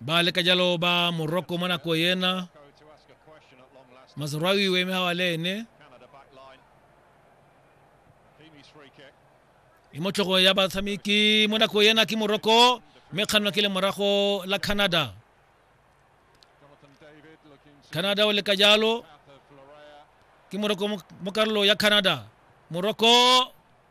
ba leka jalo ba morocco mo nako ena mazrawi o eme gawa le ene e mo tlhogo ya batshameki mo nako ena ke morocco mme kganno ke le morago la canada canada o leka jalo ke morocco mo karolo ya canada morocco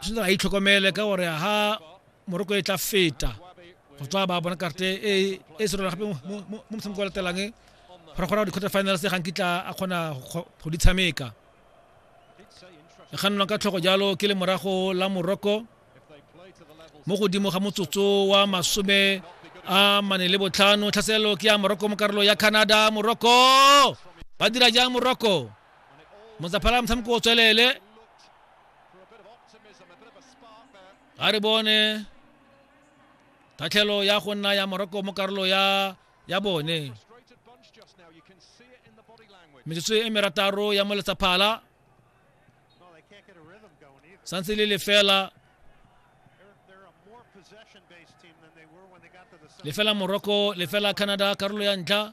tshwanetse a itlhokomele ka gore ha moroko e tla feta go tswa ba bona karte e e se rona gape mo motshameko o latelang gore kgona go di-quarter finals ga nkitla a kgona go di tshameka e kgannelwang ka tlhogo jalo ke le morago la moroko mo godimo ga motsotso wa masome a mane le botlhano tlhaselelo ke ya moroko mo karolo ya canada moroko ba dira jang moroko motsaphala motshameko o tswelele a re bone tatlhelo ya go nna ya moroko mo karolo ya ya bone metsotso e merataro ya mo letsaphala santse le lefela lefela morocco lefela canada karolo ya ntlha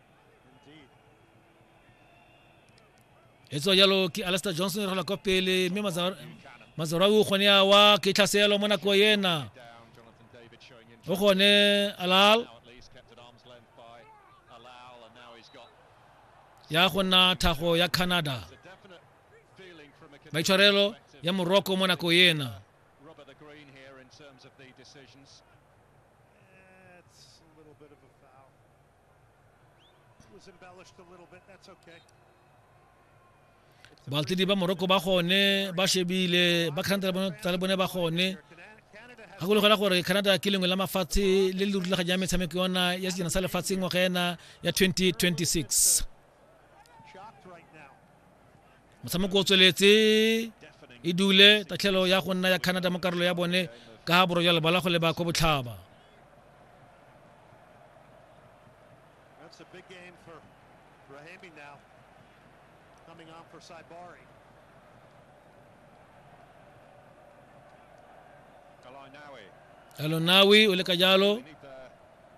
e tswa jalo ke alastair johnson re kwa pele mme mazarau o kgone awa ke tlhaselo mo nako ena o kgone alal ya go nna thago ya canada maitshwarelo ya morocco mo nako ena baltedi ba moroko ba gone ba shebile ba canada tsa le bone ba gone gakologela gore canada ke lengwe la mafatshe le le rulaganya ya metshameko yona ya sejana sa lefatshe ngwaga ena ya 2026 motshameko o tsweletse e dule tatlhelo ya go nna ya canada mo karolo ya bone ka ga borojwa lebala go leba kwa botlhaba Elonawi o le ka jalo